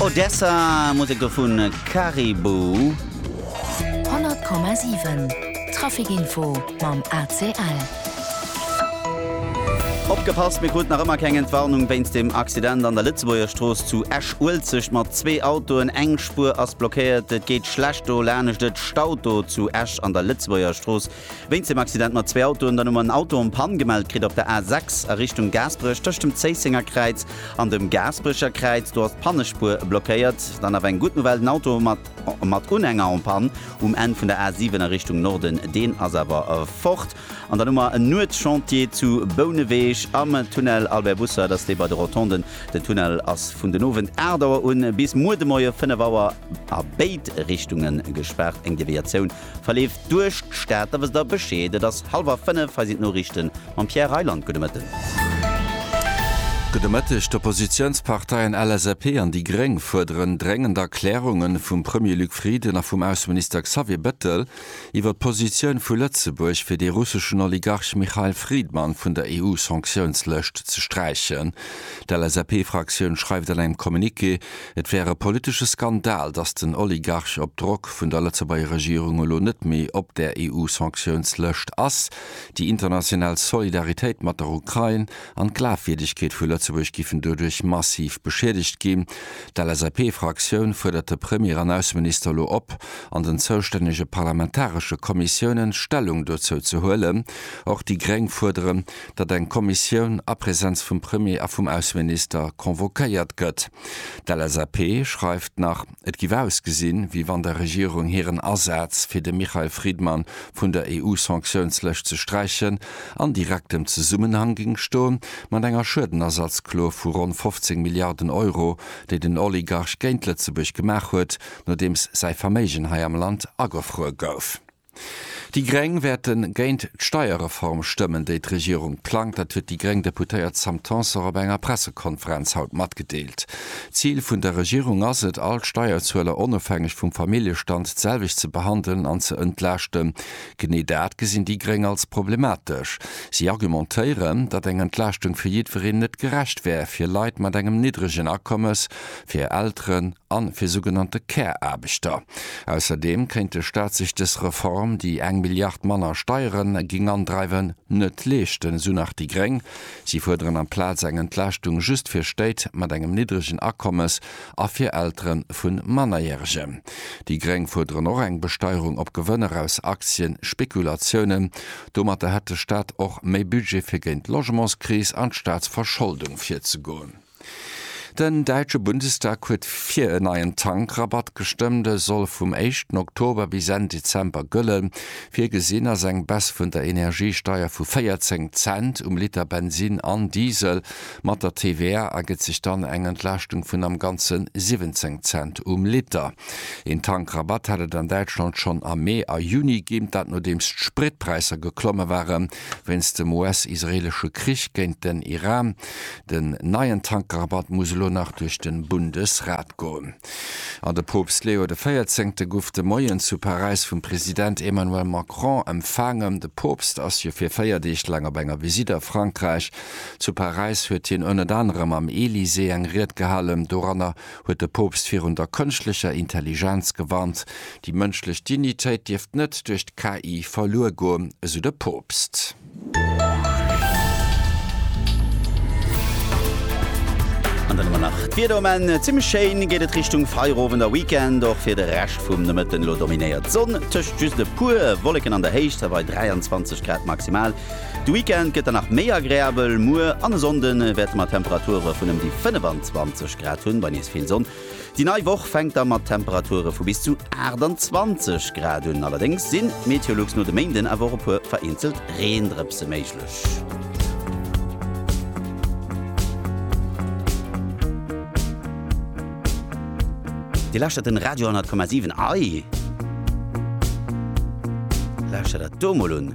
Odessa, Musek do vu Caribou. 100,7 Trafic Info mam ACL. Opgepasst, Mir kruten nach ëmmer keng Entwarnung wéinst dem Accident an der Lëtzebuerger Strooss zu Esch-Uelzecht mat zwee Autoen. Eng Spuer ass blockéiert. Et geet schlecht do, laanescht et staut do zu Esch an der Lëtzebuerger Strooss. Wéinst dem Accident mat zwee Autoen, dann hu mer en Auto en panne gemellt kritt op der A6 a Richtung Gaasperech tëscht dem Zéissenger Kräiz an dem Gaasperecher Kräiz. Do ass d'Pannespuer blockéiert. Dann awer eng gutt Nouvelle, den Auto mat Unhänger en panne um Enn vun der A7 a Richtung Norden, deen ass awer fort. An dann hu mer en Nuetschantier zu Bouneweg am Tunnel Albert Bussert ass dee bei de Rotonden. Den Tunnel ass vun den Owend 8 Auer un bis muer de Moie 5 Auer a béid Richtunge gespaart. Eng Deviatioun Verleeft duerch d'Stad, da wësst der Bescheed. Et ass hallwer 5, hei sinn d'Noriichten mam Pierre Reyland. Gudde Mëtten. Gudde Mëtteg. D'Oppositiounsparteien LSAP an déi Gréng fuerderen dréngend Erklärunge vum Premier Luc Frieden a vum Ausseminister Xavier Bettel iwwer d'Positioun vu Lëtzebuerg, fir dee russeschen Oligarch Mikhail Fridman vun der EU-Sanktiounslëscht ze sträichen. D'LSAP-Fraktioun schreift an engem Communiqué, Et wär e politesche Skandal, datt den Oligarch op Drock vun der Lëtzebuerger Regierung elo net méi op der EU-Sanktiounslëscht ass. Déi international Solidaritéit mat der Ukrain an d'Glafwierdegkeet vu Lëtzebuerg giffen doduerch massiv beschiedegt ginn. D'LSAP-Fraktioun fuerdert de Premier an Ausseminister elo op, an den zoustännege parlamentaresche Kommissiounen Stellung dozou ze huelen. Och déi Gréng fuerderen, datt eng Kommissioun a Presenz vum Premier a vum Ausseminister convoquéiert gëtt. D'LSAP schreift nach, et giff ausgesinn, wéi wann der Regierung hiren Asaz, fir de Michael Friedman vun der EU-Sanktiounslëscht ze sträichen, an direktem Zesummenhang géing stoen, mat enger Schuedenersatzklo vu ronn 15 Milliarden Euro, déi den Oligarch géint Lëtzebuerg gemaach huet, nodeems säi Verméigen hei am Land agefruer gouf. Déi Gréng wäerte géint d'Steierreform stëmmen, déi d'Regierung plangt. Dat huet déi gréng Deputéiert Sam Tanson op enger Pressekonferenz haut matgedeelt. D'Zil vun der Regierung ass et, all d'Steierzueler onofhängeg vum Familljestand d'selwecht ze behandelen an ze entlaaschten. Genee dat gesinn déi gréng als problematesch. Si argumentéieren, datt eng Entlaaschtung fir jiddwereen net gerecht wär, fir Leit mat engem niddregen Akommes, fir Elteren, a fir sougenannte Care-Aarbechter. Ausserdeem kéint de Staat sech dës Reform, déi eng Milliard manner Steiere géing andreiwen, net leeschten, esou nach déi gréng. Si fuerderen amplaz eng Entlaaschtung just fir Stéit mat engem niddregen Akommes a fir Eltere vu Mannerjäregen. Déi gréng fuerderen och eng Besteierung op Gewënner aus Aktienspekulatiounen. Domatter hätt de Staat och méi Budget fir géint d'Logementskris an d'Staatsverscholdung virzegoen. Den däitsche Bundestag huet fir en neien Tankrabatt gestëmmt. E soll vum éischten Oktober bis Enn Dezember gëllen. Virgesinn ass eng Baisse vun der Energiesteier vu 14 Cent um Liter Bensinn an Diesel. Mat der TVA ergëtt sech dann eng Entlaaschtung vun am Ganze 17 Cent um Liter. Een Tankrabatt hat et an Däitschland schonn am Mee a Juni ginn, dat nodeems d'Spritpräisser geklomme ware wéinst dem US-israeelesche Krich géint den Iran. Den neien Tankrabatt muss elo nach duerch de Bundesrat goen. An de Poopst Leo de Véierzéngte guff de Moien zu Paräis vum President Emmanuel Macron empfaangen. De Poopst ass jo fir 4 Deeg laang op enger Visitt a Frankräich. Zu Paräis huet hien ënnet anerem am Elysée eng Ried gehalen. Doranner huet de Poopst virun der kënschtlecher Intelligenz gewarnt. Déi mënschlech Dignitéit dierft net duerch d'KI verluer goen, esou de Poopst. An dann hu mer nach d'Wieder um Enn. Zimmlech schéin geet et Richtung Feierowend a Weekend. Och fir de Rescht vum Nomëtten elo dominéiert d'Sonn, tëscht just e puer Wolleken an der Héicht, se bei 23 Grad maximal. De Weekend gëtt dann nach méi agreabel, muer an e Sonnde wäerte mer Temperature vun ëm déi 25 Grad hunn, bei nees vill Sonn. Déi nei Woch fänkt da mat Temperature vu bis zu 28 Grad un. Allerdéngs si Meteolux no de Méinden awer och e puer vereenzelt Reendrëpse méiglech. Dir lauschtert den Radio 100,7. Ei! Lauschtert der do mol un!